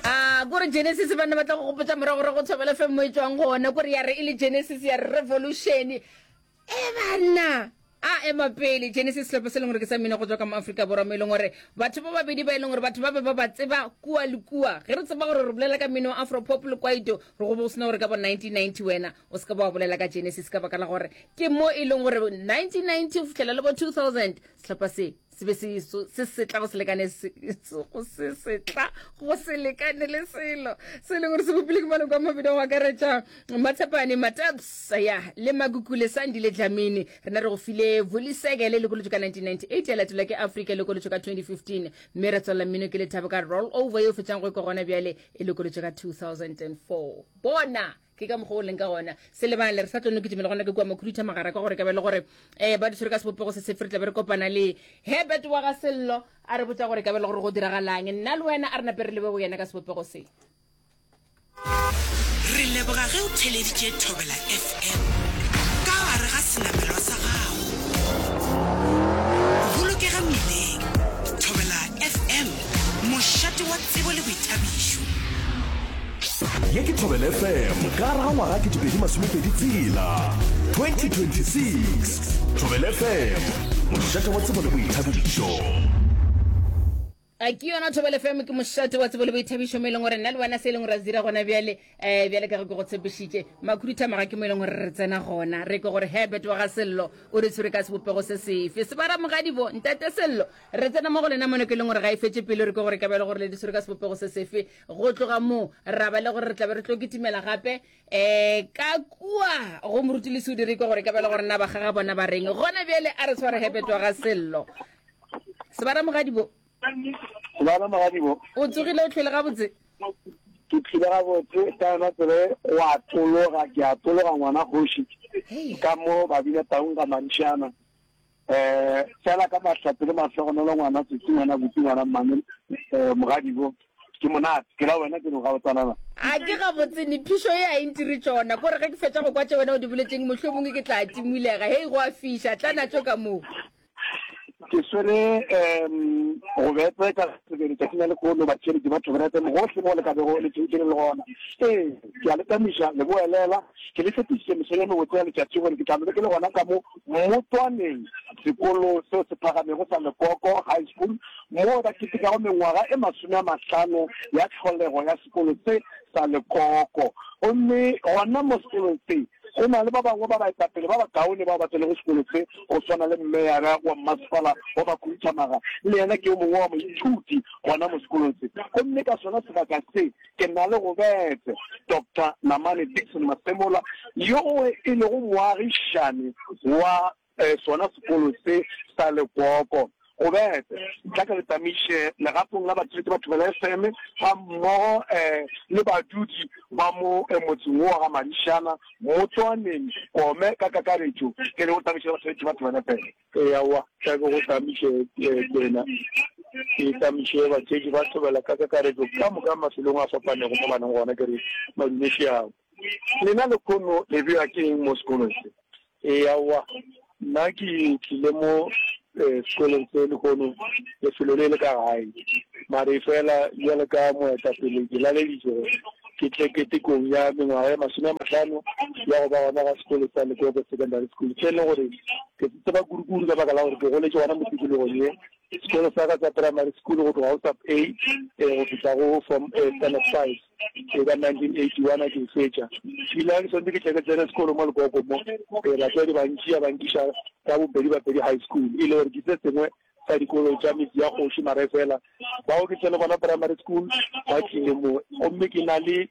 a kore genesis banna ba tla go gopotsa morago ra go tshobela fe mo e tswang gone kore ya re e le genesis ya revolution e banna a ema pele genesis selopo se e leng gore ke sa mmino go tswa ka mo aforika borwa mo e leng gore batho ba babedi ba e leng gore batho ba be ba ba tseba kua le kua ge re tseba gore re bolela ka mmino wa afropop le kwaito re go bo sena gore ka bo 1990 wena o se ka ba wa bolela ka genesis ka baka la gore ke mo e leng gore 1990 go fitlhela le bo 2000 setlhopha se se be se setla go se lekane go se setla go se lekane le selo se e leng gore se bopile ke maloko a mabedi go akaretša matshepane mataps ya le makukule sandi le dlamini rena re go file voliseke le lekolotso ka 1998 ya latelwa ke afrika lekolotso ka 2015 mme re tswelela mmino ke lethabo ka roll over yo fetsang go ikwa gona bjale e lekolotso ka 2004 bona ke ka mokgwa o leng ka gona se lebale re sa tlo noketše mele gona ke kua makhuduitha magara ka gore ka bele gore um ba di tshwere ka sebopego se sefe re tlabe re kopana le herbert wa ga sello a re botsa gore ka bele gore go diragalang nna le wena a re nape re lebe go yena ka sebopego se re leboga ge o theleditše thobela fm ka gare ga senamelwa sa gago bolokega mmileng thobela fm Mošate wa tsebo le boithabišo. Ye ke Thobela FM ka gare ga ngwaga 2020 tshela 2026 Thobela FM mošate wa tsebo le boithabišo. a ke yona thobele fm ke mošate wa tsebo le boithabišo mo e leng gore nna le wena se e leng gore a dira gona bjale um bjale ka ge ke go tshepišitše makhuduthamaga ke mo e leng gore re tsena gona re ke gore herbert wa ga sello o re tshwere ka sebopego se sefe sebaramogadibo ntate sello re tsena mo go lena mone ke e leng gore ga e fetse pele re ke gore ka bjale gore le di tshwere ka sebopego se sefe go tloga moo ra ba le gore re tlabe re tlo kitimela gape um ka kua go moruti le seudi re ke gore ka bjale gore na bagaga bona ba reng gona bjale a re tshware herbert wa ga sello sebaramogadibo Lwana mogadibo. O tsogile o tlhwele gabotse? Ke tlhile gabotse ka yona tsebe wa tologa ke a tologa ngwana kgoši ka mo ba bile taung ka mantšhana eh fela ka mahlatse le mahlogonolo ngwana tsotsi ngwana botsi ngwana mmane eh, mogadibo ke monate ke la wena ke no gabotsanana a ke gabotse ne phišo e a entire tšona kore ge ke fetša go kwa tše wena o di boletseng mohlomongwe ke tla timulega hei go a fiša tla natso ka moo ke swere um go betse ka sebele tsatsi la lekolo batšhedi ke batho berete mogohle mo le ka bego le tšhentšhele le gona ee ke a le tamiša le boelela ke le tshepišitše mesong ya mebotse ya letšatši gore ke tla lebe ke le gona ka mo motswaneng sekolo seo se phagamego sa lekoko high school moo ba ketekago mengwaga e masome a mahlano ya tlholego ya sekolo se sa lekoko. Gomme gona mo sekolong se, go na le ba bangwe ba baetapele ba bakaone bao ba tsenego sekolo se, go swana le mmeyara wa mmasepala wa bakhuduthamaga, le yena ke yo mongwe wa moithuti gona mo sekolong se. Gomme ka sona sebaka se, ke na le go bete Doctor Namane Dickson Masemola, yoo e lego moagišani wa Ee, sona sekolo se sa lekoko. Go bete, tla ke re tsamaiše legatong la batswetši ba Thobela FM gammogo ee le badudi ba mo motseng wo wa ga Madišana, Motswaneng, Kome ka kakaretšo. Ke re o tsamaiše le basebetši ba Thobela FM. Ee, aowa, tla ke go tsamaiše kwena, ke tsamaiše batswetši ba Thobela ka kakaretšo ka moka mafelong a fapanego mo ba leng gona, ke re Madume Šeao. Lena lekhono le bewa ke eng mo sekolong se? Ee, aowa. Nna ke tlile mo sekolong se lekhono lefelo le le ka gae. Mare efela bjalo ka moetapele ke laleditšwe gore ke tle ketekong ya mengwaga ye masome a mahlano ya go ba gona ga sekolo sa Lekobo Secondary School, se e lego gore ke se tseba kudukudu ka baka la gore ke goletše gona mo tikologong ye. Sekolo sa ka sa primary school go tloga go sub A eh, go fihla go form eh, standard five eh, ka 1981 a ke e fetša. Ebile ke swantse ke tle ke tsene sekolo mo lekoko mo eh, batswadi ba ntšia ba nkiša ka bopedi bapedi high school e le gore ke se sengwe sa dikolo tša metsi ya kgoši mara e fela bao ke tsene gona primary school ba tlile mo gomme ke na le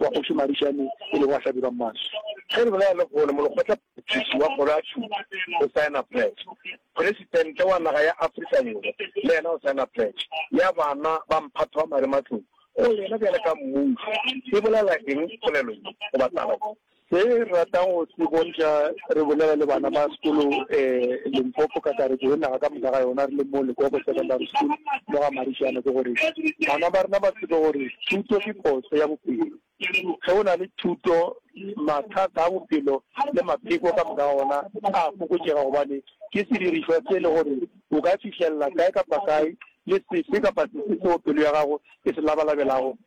wa Kgoši Marishane e lego wa hlabirwa maswi. Ge re bolela lehono, molekgotlaphethiši wa kgoro ya thuto o saena pletšo, Presitente wa naga ya Afrika Borwa le yena o saena pletšo ya bana ba mphato wa marematlou. Go yena bjale ka mmušo e bolela eng polelo ye goba taba ye? Re rata go se bontša re bolela le bana ba sekolo um Limpopo kakaretšo le naga ka moka ga yona re le mo Lekoko Secondary School mo ga Marijana ke gore bana ba rena ba tsebe gore thuto ke kose ya bophelo. Ge o na le thuto, mathata a bophelo le mapheko ka moka ga ona a a fokotšega gobane ke sedirišwa se e le gore o ka fihlelela kae kapa kae le sefe kapa sefe seo pelo ya gago e se labalabelago.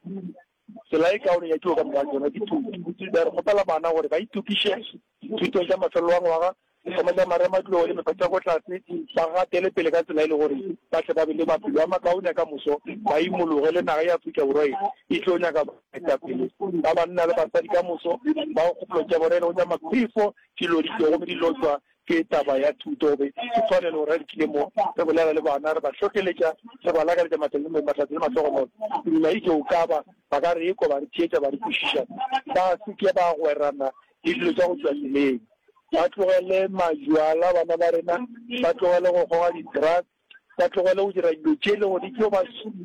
Tsela e kaone ya tiro ka moka ga tšona ke thuto. Botsebi bja re kgopela bana gore ba itokiše dithutong tša mafelelo a ngwaga, sehloma tša marematlou le mekgwa tša ko tlase, ba gatele pele ka tsela e le gore ba tle ba be le maphelo a makaone a ka moso, ba imologe le naga ya Afrika Borwa ye e tlo nyaka baetapele ba banna le basadi ka moso bao kgopolo tša bona e lego tša makhwifo, di loditšwego gomme di lotšwa Ke taba ya thuto, be ke swanelo gore re tlie mo, re bolela le bana, re ba hlohleletša, re ba lakaletša matladi le mahlatse le mahlogonolo. Ke duma e tšo ka ba, ba ka re ekwa ba re theetša, ba re kwešiša, ba se ke ba gwerana le dilo tša go tšwa tseleng, ba tlogele majwala, bana ba rena ba tlogele go goga di-drugs, ba tlogele go dira dilo tše e lego di tlo ba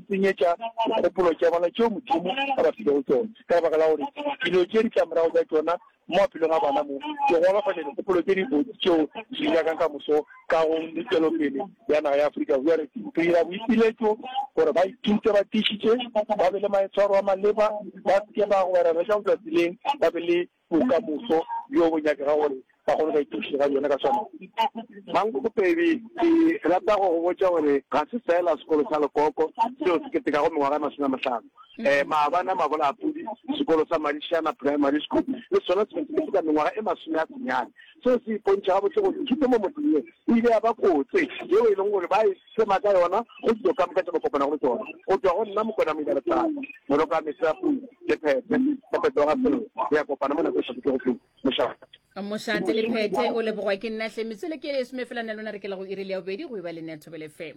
senyetša dikgopolo tša bona tšeo Modimo a ba filego tšona, ka lebaka la gore dilo tše di tla morago tša tšona mo maphelong a bona mo di golafatša dikgopolo tše dibotse tšeo di di nyakang ka moso kagong le tšwelopele ya naga ya Afrika Borwa. Re dira boipiletšo gore ba ithute ba tiišitše, ba be le maitshwaro a maleba, ba se ke ba gobareletša go tšwa tseleng, ba be le bokamoso bjo bo nyakega gore ba kgone go ka ithuša ka bjona ka tshwanelo. Mankgopedi, ke rata go go botša gore ga se feela sekolo sa lekoko seo se ketekago mengwaga e masome a mahlano. Maabane a Mabolapudi, sekolo sa Madišana Primary School le sona se be se keteka mengwaga e masome a senyane. Seo se ipontšha gabotse gore thuto mo motseng ye e ile ya ba kotse yeo e lego gore ba e sema ka yona go dilo ka moka tše ba kopanago le tsona. Go tšwa go nna Mokwena Moilaletšana, Moloko a Metsi a Pula, le Phethe ka Petoga Sello re ya kopana mo nako e sa dutego pele. Mošate. Mošate le Phethe o lebogwa ke nna hle. Metswele ke e somefela nna lona re ke la go iri le ya bobedi go eba le nea Thobela FM.